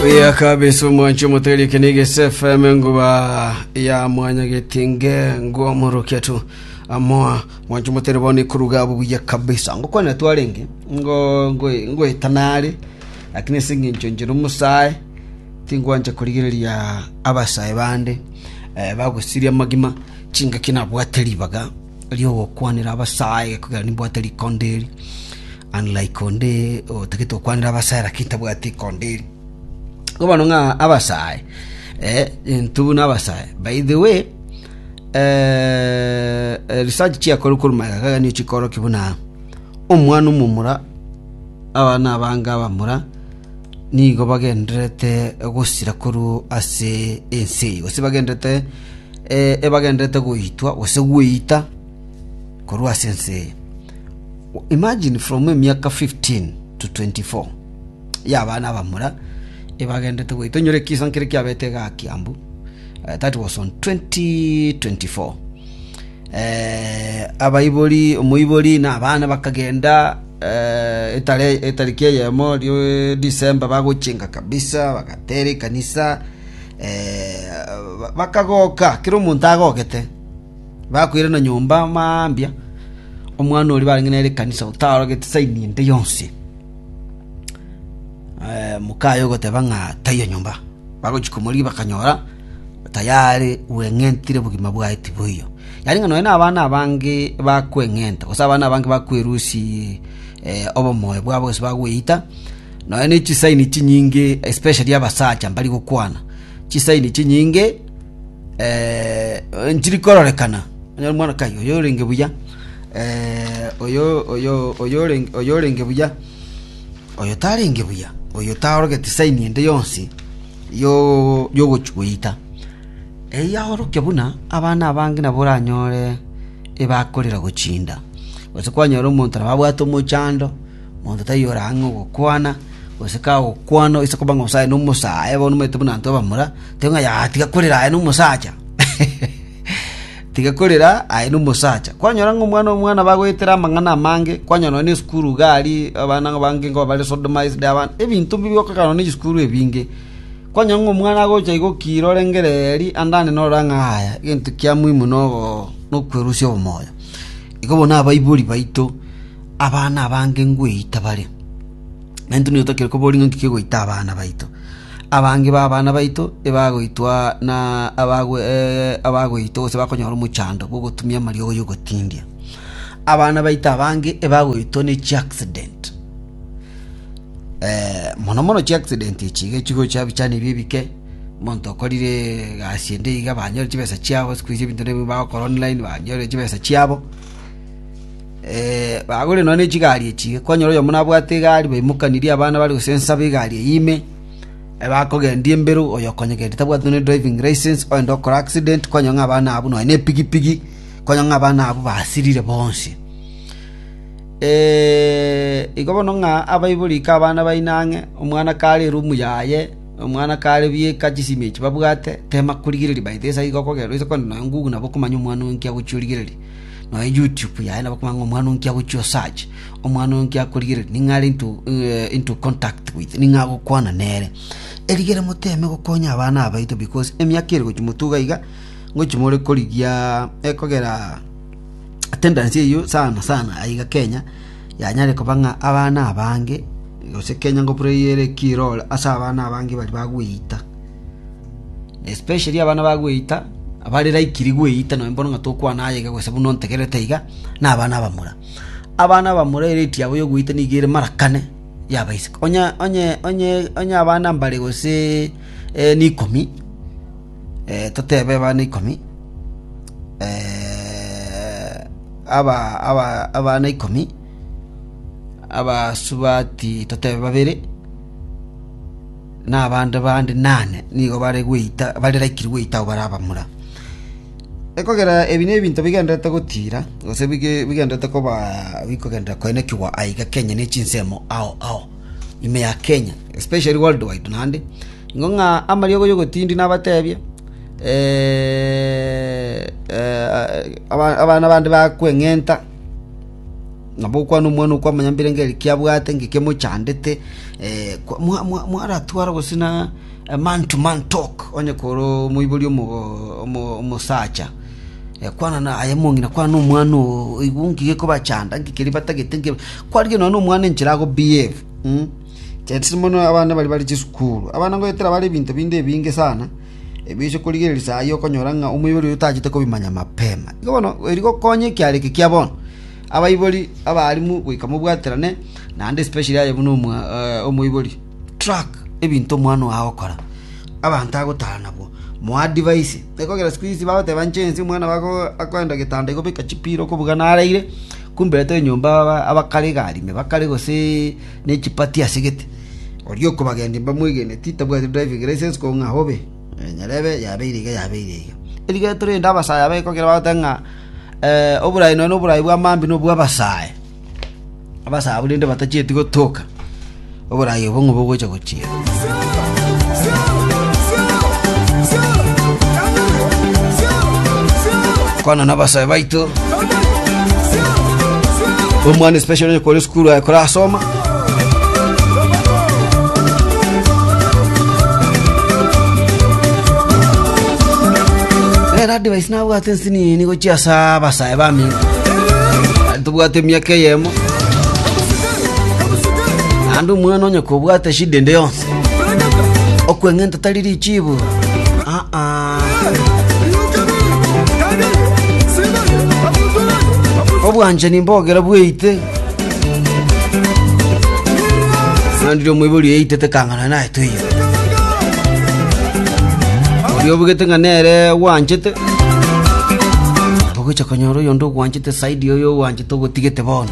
Oya kabisa omwanchi omoteri kinigi SFM nguba ya mwanya getinge ngo morokia tu amoa mwanchi omoteri boni kuruga bubuya kabisa ngo kwana twarenge ngo ngo ngo etanari lakini singincho njiro musae tingwancha kurigereria abasae bande eh, bagosiria magima chingaki nabwate ribaga ri'ogokwanera abasae, ekogera nimbwate rikonda eri, unlike onde otagete gokwanera abasae lakini tabwati rikonda eri. Igo bono ng'a abasae, eh, intwe buna abasae. By the way, eh, eh, research chiakorwa korwa magega iga nigo chikorokia buna omwana omomura abana abange abamura nigo bagendererete gosira korwa ase ense eye, gose bagendererete eh, ebagendererete goitwa gose gweita korwa ase ense eye. Imagine from emiaka 15 to 24 ya abana abamura ebagendererete goita, onyore ekisa nkere kiabete igaa Kiambu, eh, that was on 2024 Abaibori, omoibori na abana bakagenda etariki eyemo December bagochenga kabisa, bagatera ekanisa, bakagoka kera omonto agogete. Bakoirana nyomba mambia, omwana oria barenge nere ekanisa otarogete sign ende yonsi. Moka aye ogoteba ng'a taiyo nyomba. Bagochia komorigia bakanyora. tayari gweng'entire bogima bwaye tiboiyo. Yaani ng'a nonya nabana abange bakweng'enta, gose abana abange bakwerusia obomoyo bwabo gose bagweita, nonya ne chisaini chinyinge especially abasacha mbari gokwana, chisaini chinyinge nchiri kororekana, onye omwana kai oyo orenge buya oyo oyo oyo orenge oyo orenge buya, oyo tarenge buya, oyo tarorogeti saini ende yonsi. y'ogochia goita. Eyio aorokia buna abana abange nabo oranyore ebakorera gochinda. Gose kwanyora omonto nabo abwate omochando, monto taiyo ore ang'e ogokwana, gose kagokwana ase okoba ng'a aye nomosae bono omanyete buna intwe abamura, tebe ng'a yaya tiga korera aye nomosacha. Tiga korera aye nomosacha. Kwanyora ng'a omwana omwana bagoetera amang'ana amange, kwanyora nonye nesukuru iga aria abana abange nkoba bare sodomised, ebinto mbibe okogera nonye chisukuru ebinge. Kwanyora ng'a omwana agocha iga okire orengere eri andane norora ng'a yaya, egento kia muhimu nogo nokwerusia obomoyo. Igo bono abaibori baito abana abange ngweita bare. Naintwe nigo totakeire koboria ng'a inki kegoita abana baito. Abange b'abana baito nibagoitwa na abagoitwa gose bakonyora omochando bw'ogotumia amariogo y'ogotindia. Abana baito abange nibagoitwa ne chiaccident, mono mono chiaccident echi iga chigocha ebichani ebi ebike, omonto okorire egasi ende iga banyore chibesa chiabo, siku hizi ebinto nigo bagokora online, banyore chibesa chiabo. Bagorire nonya nechigari echi, kwanyora oyomo nabwate egari, baimokanirie abana bare gosensa b'egari eyio ime, bakogendia embero, oyo okonyegendia tabwati nonya ne driving licence, ogende okore accident, kwanyora ng'a abana abwo nonya nepigipigi, kwanyora ng'a abana abwo basirire bonsi. Igo bono ng'a abaibori ika abana baino ang'e, omwana kare erumu yaye, omwana kare bieka chisimi echi babwate, tema korigereria by the way, esage iga okogenda oise kogenda nonya ng'ugu nabo okomanya omwana oyo inki agochia origereria. nonya YouTube yaye nabo komanya ng'a omwana onkio agochia o search, omwana onkio akorigereria ning'o are into into contact with, ning'o agokwana nere. Erigere moteme gokonya abana abaito because emiaka ere gochia motuga iga, ngochia more korigia ekogera attendance eyio sana sana aye iga Kenya, yanyare koba ng'a abana abange, gose Kenya ngobureyiere ekirore ase abana abange baria bagweita. especially abana ba gweita, abare like ri gweita nonye mbono ng'a tokwana aye iga gose buna ontegerete iga, na abana abamura. Abana abamura erate yabo ya gweita nigo ere mara kane ya abaiseke. Onye onye onye onye abana mbare goseee eeh rikomi, totebe abana ikomi, aba aba abana ikomi, abasubati totebe babere. na abande bande inane nigo bare gweita, bare like gweita ao bare abamura. Ekogera ebi nebinto bigendererete gotiira, gose bigendererete koba bikogenderera koenekigwa aiga Kenya ne chinsemo ao ao, ime ya Kenya, especially world wide naende, ingo ng'a amariogo y'ogotindi nabatebie, abana bande bakweng'enta. Nabo okwana omwana okwo amonyambire ng'a eki abwate inga kemochandete, eh, kwa- mwa- mwa- mwaratwara gose na a man to man talk onye kore omoibori omo- omo- omosacha, eh, kwana na aye omong'ina kwana na omwana oo oigwe inki gekobachanda inki keria batagete inki ba-" kwarigia nonya na omwana enchera ago behave mm. Chelsea mono abana baria bare chisukuru, abana ngoetera bare ebinto binde ebinge sana. Ebiche korigereria saa ayio okonyora ng'a omoibori oyo tachete kobimanya mapema. Igo bono eri gokonya ekiara eke kia bono, abaibori abaarimu goika mobwaterane naende especially aye buna omoibori. Track ebinto omwana oo agokora, abanto agotara nabwo, mo advise. Ekogera siku hizi bagoteba inche inse omwana bako akoenda getanda iga obeka chipira okobuga naraire, kumbe atoe nyomba abakare iga arime bakare gose. ne chipati ase gete. Oria okobagendia mbamwegeneti tabwati driving license ko ng'a obe. Nyarebe yabeire iga yabeire iga. Erigeto rende abasae aba ekogera bagoteba ng'a oborai nonya noborai bwa Mambi nobwa abasae. Abasae abwo rende batachieti gotoka oborai obo ng'o bogocha gochia. kwana nabasae baito omwana especially onye kore sukuru aye korasoma rero advice nabwate nsini nigo chiasa abasae bami tobwate emiaka eyemo naende omwana onye kobwate shida ende yonsi okweng'enta tari richibu aa obwanchani mbogera bweite nandire omoibori eitete kang'ana naye tuiyo oria obugete ng'a nere gwanchete abagocha konyora oyonde ogwanchete saidi oyo ogwanchete ogotigete bono